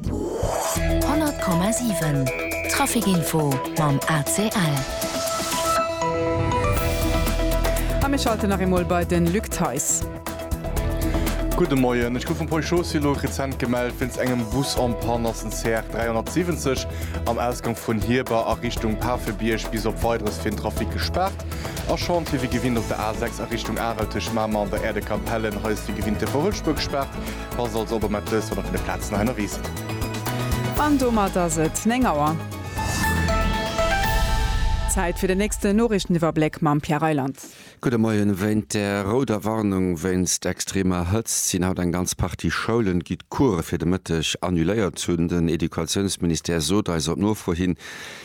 100,7 Traficinfo mam ACL. A mir schalte nach eemol bei de Luc Theis. Gudde Moien. Ech gouf vum Peugeot Sylo rezent gemellt wéinst engem Bus en Panne. Ass den CR 370 am Ausgang vun Hierber a Richtung Pafebierg bis op Weideres fir den Trafic gespaart a schonn fir wéi gewinnt op der A 6 a Richtung Arel tëscht Mamer an der Aire de Capellen. Hei ass wéi gewinnt de Verhëllspur gespaart. Passt also op, mat wësst, wann der vun de Plazen hei ënnerwee sidd. An domat ass et 9 Auer. Zäit fir den nächsten Noriichteniwwerbléck mam Pierre Reyland. Gudde Moien. Wéint der rouder Warnung wéinst extremer Hëtzt sinn haut eng ganz Partie Schoulen, gi d'Course fir de Mëtteg annuléiert hunn. Den Educatiounsministère sot eis op Nofro hin,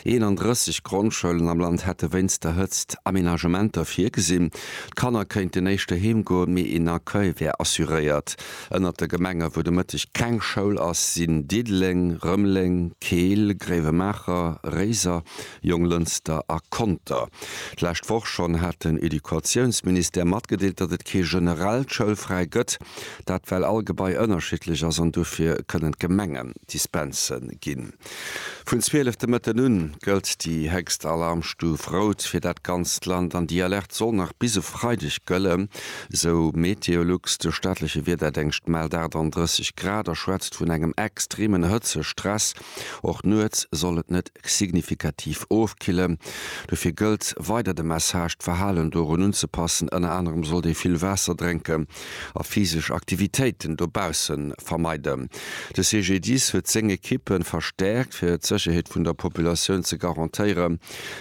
31 Grondschoulen am Land hätte wéinst der Hëtzt Amenagementer virgesinn. D'Kanner kéinten éischter heem goen, mee een Accueil wär assuréiert. Ënnert de Gemenge wou de Mëtteg keng Schoul ass, sinn Diddeleng, Rëmeleng, Keel, Gréiwemaacher, Réiser, Jonglënster a Conter. D'lescht Woch schonn hat den Educatiounsministère matgedeelt, datt et kee generellt Schoulfräi gëtt. Dat well all Gebai ënnerschiddlech ass an dofir kënnen d'Gemenge Dispense ginn. Vun 12 de Mëtten un gëllt déi héchst Alarmstuf rout fir dat ganzt Land an déi Alerte soll nach bis e Freideg gëllen, esou MeteoLux. De staatleche Wiederdéngscht mellt 38 Grad a schwätzt vun engem extremen Hëtzestress. Och nuets soll et net signifikativ ofkillen. Dofir gëllt weider de Message, d'Verhalen dorun unzepassen. Ënner anerem sollt ee vill Waasser drénken a physesch Aktivitéiten dobausse vermeiden. De CGDIS huet seng Ekippe verstäerkt, fir d'Sécherheet vun der Populatioun ze garantéieren.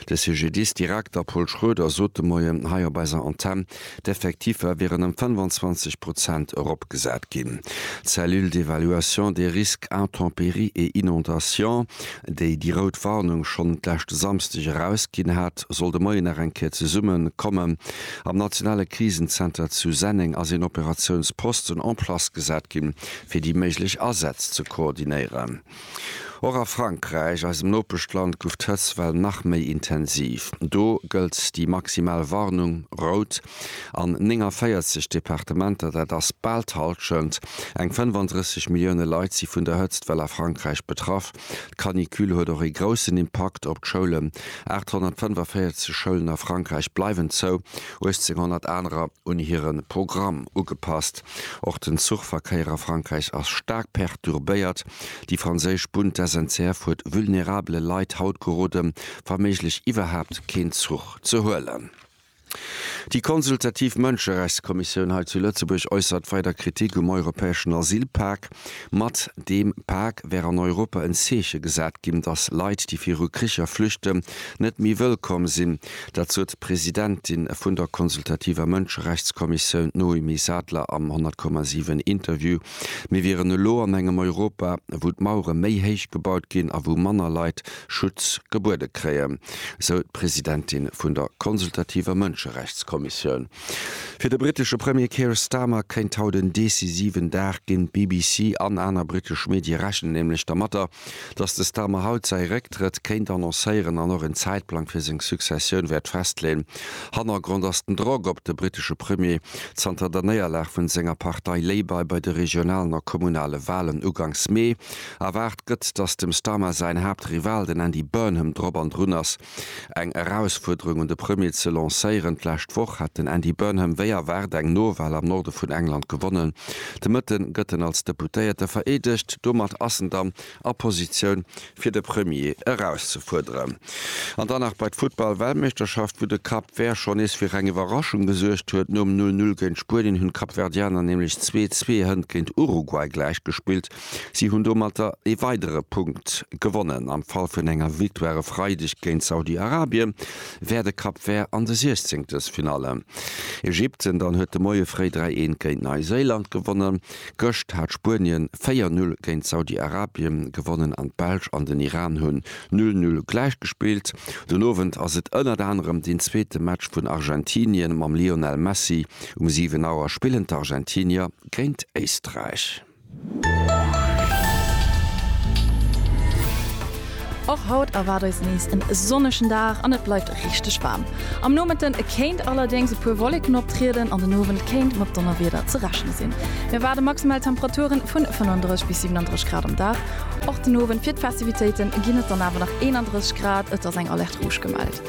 De CGDIS-Direkter Paul Schroeder sot de Moien hei op eiser Antenn, d'Effektiffer wieren ëm 25 Prozent eropgesat ginn. D'Cellule d'évaluation des risques intempéries et inondations, déi déi rout Warnung schonn d'leschte Samsdeg erausginn hat, soll de Moien nach eng Kéier zesumme kommen. Am nationale Krisenzenter zu Senneng ass een Operatiounsposten en place gesat ginn, fir déi méiglech Asätz ze koordinéieren. Och a Frankräich, eisem Nopeschland, gouf d'Hëtzt well nach méi intensiv. Do gëllt déi maximal Warnung, rout, an 49 Departementer, dat ass bal d'Hallschent. Eng 35 Millioune Leit si vun der Hëtzt well a Frankräich betraff. D'Canicule huet och ee groussen Impakt op d'Schoulen, 845 Schoulen a Frankräich bleiwen zou, 1800 anerer un hire Programm ugepasst. Och den Zuchverkéier a Frankräich ass staark perturbéiert. Déi franséisch Bunn, d'SNCF, huet vulnerabele Leit haut geroden, wa méiglech iwwerhaapt keen Zuch ze huelen. Déi consultativ Mënscherechtskommissioun hei zu Lëtzebuerg äussert weider Kritik um europäeschen Asylpak. Mat deem Pak wär an Europa en Zeeche gesat ginn, datt Leit, déi viru Kricher flüchten, net méi wëllkomm sinn. Dat sot d'Presidentin vun der consultativer Mënscherechtskommissioun, d'Noémie Sadler am 100,7 Interview. Mir wieren elo an engem Europa, wou d'Mauere méi héich gebaut ginn a wou manner Leit Schutz gebuede kréien, sou d'Presidentin vun der consultativer Mënscherechtskommissioun. Fir de brittesche Premier Keir Starmer kéint haut en decisiven Dag ginn. D'BBC an aner brittesch Medie rechnen nämlech dermatter, datt de Starmer haut säi Récktrëtt kéint annoncéieren an och en Zäitplang fir seng Successioun wäert festleeën. Hannergrond ass den Drock op de brittesche Premier zanter der Néierlag vun senger Partei Labour bei de regionalen a kommunale Walen ugangs Mee. Erwaart gëtt, datt dem Starmer säin Haaptrival, den Andy Burnham, drop an drun ass, eng Erausfuerderung un de Premier ze lancéieren. D'lescht Woch hat den Andy Burnham wéi erwaart eng Nowal am Norde vun England gewonnen. De Mëtte gëtt en als Deputéierte vereedegt. Domat ass en dann a Positioun, fir de Premier erauszefuerderen. An dann nach bei d'Futtball-Weltmeeschterschaft, wou de Cap Vert schonn nees fir eng Iwwerraschung gesuergt huet. Nom Null-Null géint Spuenien hunn d'Kapverdianer nämlech zwee Zwee-Hënn géint Uruguay gläichgespillt. Si hunn domatter ee weidere Punkt gewonnen. Am Fall vun enger Victoire e Freideg géint Saudi-Arabien, wär de Cap Vert an de Siechzenktes-Finalle. Ägypten dann huet de Moie fréi 3 Eent géint Neiséiland gewonnen. Gëscht hat Spuenien 4 Null géint Saudi-Arabien gewonnen an d'Belsch an den Iran hunn Null Null gläich gespillt. Den Owend ass et ënnert anerem deen zweete Match vun Argentinien mam Lionel Messi. Um 7 Auer spillen d'Argentinier géint Éisträich. Och haut erwaart eis nees en sonnegen Dag an et bleift richteg waarm. Am Nomëtten kéint allerdéngs e puer Wolleken optrieden an den Owend kéint mat Donnerwieder ze rechne sinn. Mir erwaarde maximal Temperaturen vun 35 bis 37 Grad am Dag. Och den Owend fir d'Festivitéiten ginn et dann awer nach 31 Grad, et ass eng Alerte Rouge gemellt.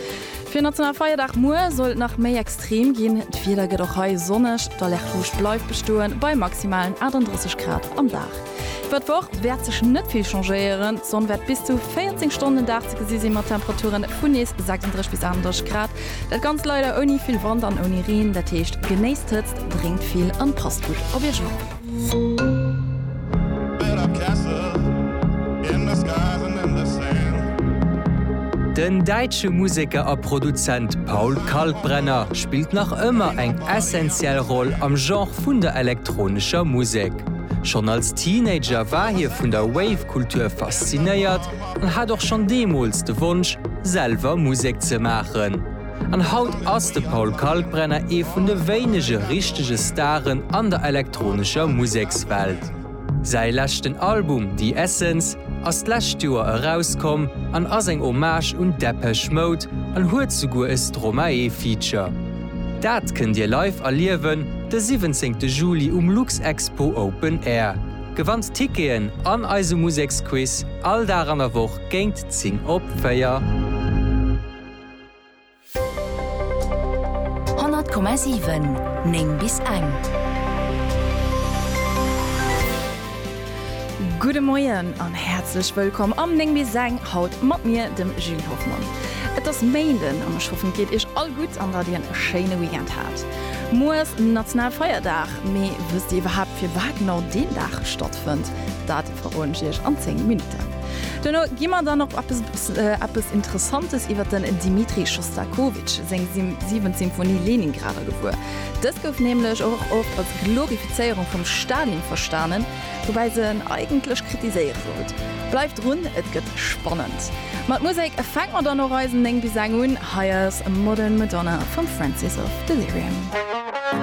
Fir Nationalfeierdag muer soll et nach méi extrem ginn. D'Wieder gëtt och hei sonneg, d'Alerte rouge bleift bestoen, bei maximalen 38 Grad am Dag. Iwwer d'Woch wäert sech net vill changéieren, d'Sonn wäert bis zu 14 Stonnen den Dag ze gesi sinn, mat Temperature vun nees 36 bis 38 Grad. Dat Ganzt leider ouni vill Wand an ouni Reen, dat heescht, genéisst d'Hëtzt, drénkt vill an passt gutt op Iech op. Den däitsche Museker a Produzent Paul Kalkbrenner spillt nach ëmmer eng essentiell Roll am Genre vun der elektronescher Musek. Schonn als Teenager war hie vun der Wave-Kultur faszinéiert an hat och schonn deemools de Wonsch, selwer Musek ze maachen. An haut ass de Paul Kalkbrenner ee vun de wéinege richtege Staren an der elektronescher Musekswelt. Säi leschten Album The Essence ass d'lescht Joer erauskomm an ass eng Hommage un Depeche Mode an huet souguer e Stromae-Feature. Dat kënnt Dir live erliewen de 17 Juli um Luxexpo Open Air. Gewannt Ticketen an eise Museksquiz all Dag an der Woch géint 10 op 4. 100,7 9 bis eng. Gudde Moien an häerzlech wëllkomm am 9 bis eng, haut mat mir, dem Julie Hoffmann. Et ass Méinden an ech hoffen et geet iech all gutt an datt dir en schéine Weekend hat. Muer ass Nationalfeierdag, mee wësst dir iwwerhaapt firwat genau deen Dag stattfënnt? Dat. Verroen ech iech an 10 Minutten. Duerno gi mer dann op eppes Interessantes iwwer den Dmitri Schostakowitsch seng siwent Symphonie Leningrader gewuer. Dës gouf nämlech och oft als Glorifizéierung vum Stalin verstanen, woubäi se en eigentlech kritiséiere sollt. Bleift drun, et gëtt spannend! Mat Musek fänke mer dann och eisen 9 bis eng un. Hei ass Modern Madonna vum Francis of Delirium.